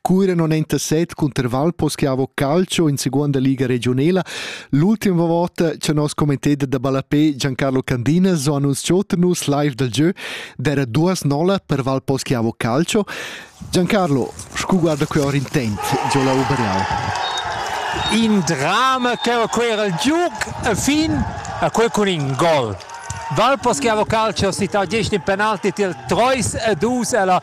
Cura non è interset cunter Valposchiavo Calcio in seconda liga regionela, l'ultima volta che nos commentator da ballapé Giancarlo Candinas ho annunciato nus live dal gieu d'era duas nola per Valposchiavo Calcio. Giancarlo, scu guarda quei ora intent giò la Ubereal? In drama che va quei al giuc e fin a quei cun in gol. Valposchiavo Calcio ha cità 10 in penalti tiel 3 e 2 ella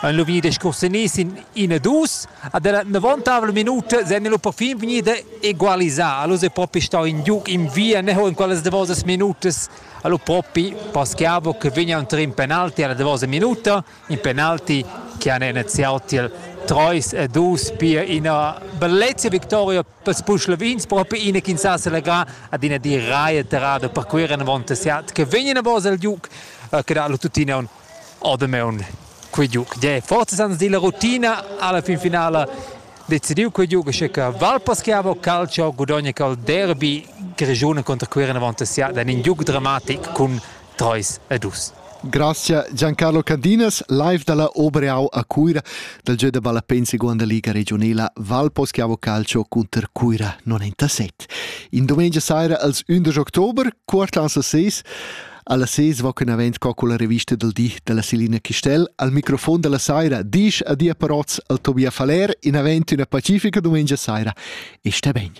Han lu vegni discussiunai sin ina dus ad era novantavla minuta sen lu perfin vegnida egualisar. Lu è propi stau in giug in via neu in quellas davosas minutas. Allo propi Paschiavo che vegna entri in penalti alla davosa minuta, in penalti che han iniziau tiel 3 e 2 pia ina bellezia victoria per Spuschlovins proprio ina che sa selegra ad ina di raia terrada per quei renvonta siat che vegna a vosa il giug che dà tuttina un Oh damaun quei giug de forzas ans della rutina alla fin finala decidiu quei giug che che Valpaschiavo Calcio gudogna col derby Grigione contro Cuira avanti sia dan in giug dramatic cun 3 e 2. Grazia Giancarlo Candinas, live dalla Obreau a Cuira dal gieu da ballapén seconda liga regionela Valposchiavo Calcio contro Cuira 97. In domenica saira als 11 october, quart lanza 6, Alla ses va quen avent co con la revista del di della Selina Chistel, al microfon della saira, disch adia parots al Tobia Faller in avent una pacifica domenica saira. E sta ben.